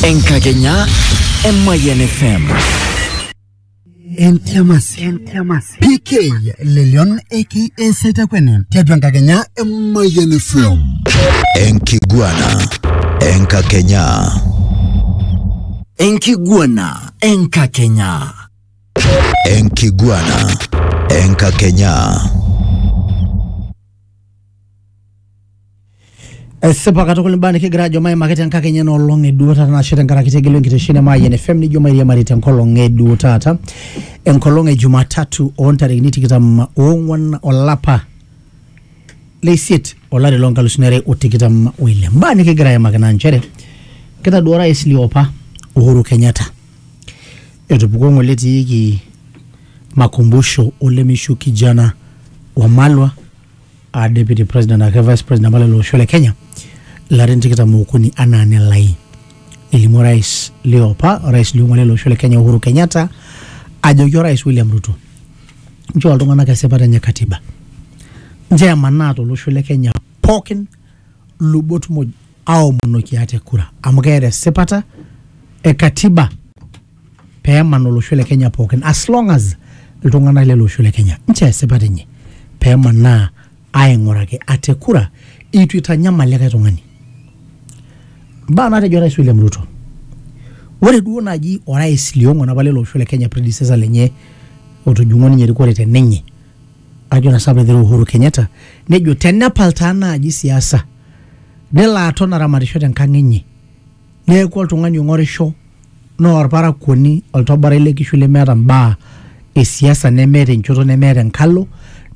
Enkagenyaa Emayian FM. Entiamasi. Entiamasi. PK Lelion eki eseitakwene tiatua enkakenya Emayian FM. Enkiguana Enkakenya. Enkiguana Enkakenya. Enkiguana Enkakenya. Esipa katukul imbaa nikigira ajo maimaki tenkakenya ena olong e duo taata nashe tenkaraki tegelu enkitesheni e Mayian FM nijo mairiamari tenkolong e duo taata enkolong e Jumatatu oo ntarikini tikitam oong'wan olapa le isiet olari loo nkalusuni are o tikitam o ile. Imbaa nikigira aimaki naa nchere kitaduo orais liopa Uhuru Kenyatta etupukuo ng'ole etiiki makumbusho olemeishu kijana Wamalwa a deputy president ake vice president apa lelo osho le kenya larin tikitam okuni anaa nelai nelimu orais liopa orais liong'uan lele osho le kenya uhuru kenyatta ajoki orais william ruto nchoo iltung'anak esipata enye katiba nchoo emanaa tolosho le kenya pookin lubot muj aomonoki ate kura amu keeta esipata e katiba pee eman olosho le Kenya pookin as long as iltung'anak lele osho le Kenya nche esipat enye pee emanaa aing'uraki ate kura eitu eitanyamal likae tung'ani. Mbaa naatejo Orais William Ruto. Ore duo naaji orais liong'uan apa lele osho le Kenya predecessor lenye otujung'o ninye erikore te ninye ajo naa sapa egira Uhuru Kenyatta nejo tenepal taa naaji siasa nelo aton aramatisho tenkang enye neeku oltung'ani ong'orisho naa orparakuoni oltoborai le kishu lemeeta mbaa e siasa nemeeta enchoto nemeeta enkalo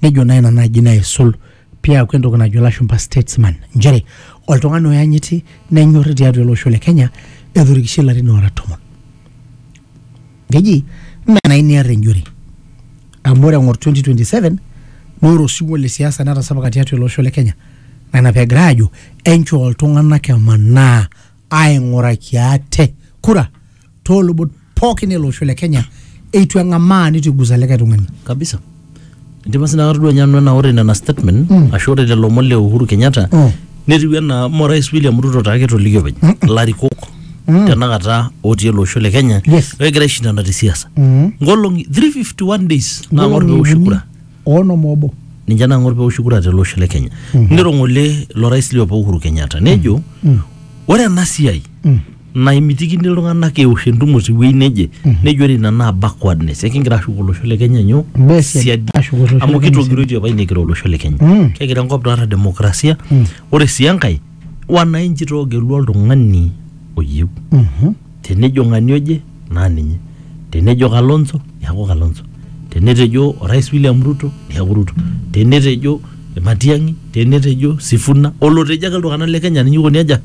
nejo naa ina naaji naisul piaku entoki najo ilashumpa statesman nchere oltung'ani oyanyiti nenyorri tiatua ele osho le kenya etorikishe ilarin oora tomon. keji mme enai niar enjore amu ore eng'or 2027 naa ore osiwuo le siasa netasapuka tiatua ele osho le Kenya naa ina peegira aajo enchoo iltung'anak emanaa aing'uraki ate kura toolubot pookin ele osho le Kenya eitu eng'amaa nitu igusa likae tung'ani. kabisa Ndipa sina katodua ninye nanu enaa ore nena statement ashu ore lelo omon le Uhuru Kenyatta Mm. netiu enaa mo Rais William Ruto taa ketolikio openy ilarikok tenakata otii ele osho le Kenya Yes. egira aishindana te siasa. Mm. Nkolong'i 351 days naang'or pee eoshi kura. Oonom obo. ninche naang'or pee eoshi kura tele osho le Kenya. Nirong'ole ilo rais liopa Uhuru Kenyatta nejo ore ena siai Mm. naimitikini iltung'anak eosh entumo tewuei neje nejo ore ina naa backwardness ekingira ashuk olosho le kenya nyoo Mbaa esiadi. siadi Ashuk olosho le amu Kenya kitogiroitie apa inekira olosho le kenya Mm. kegira enkop naata demokrasia ore sii enkae wananchi toogelua oltung'ani oyieu Mhm. tenejo ng'ani oje naa ninye tenejo kalonzo neaku kalonzo tenetejo orais william ruto neaku ruto tenetejo matiang'i tenetejo sifuna olotejo ake iltung'anak le kenya ninye ikoni aja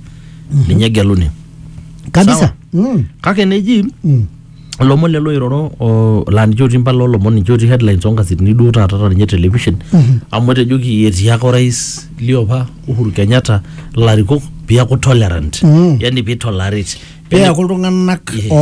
ninye egeluni kabisa Sawa. mm. kake neji Mm. ilomon lelo oiroro o- laa ninche otii mpala olomon ninche otii headlines onkasetini duo taata ta ninye television amu etejoki etii ake orais liopa Uhuru Kenyatta larikok piaku tolerant Mm. yani pitolerate peaku iltung'anak Yeah. oo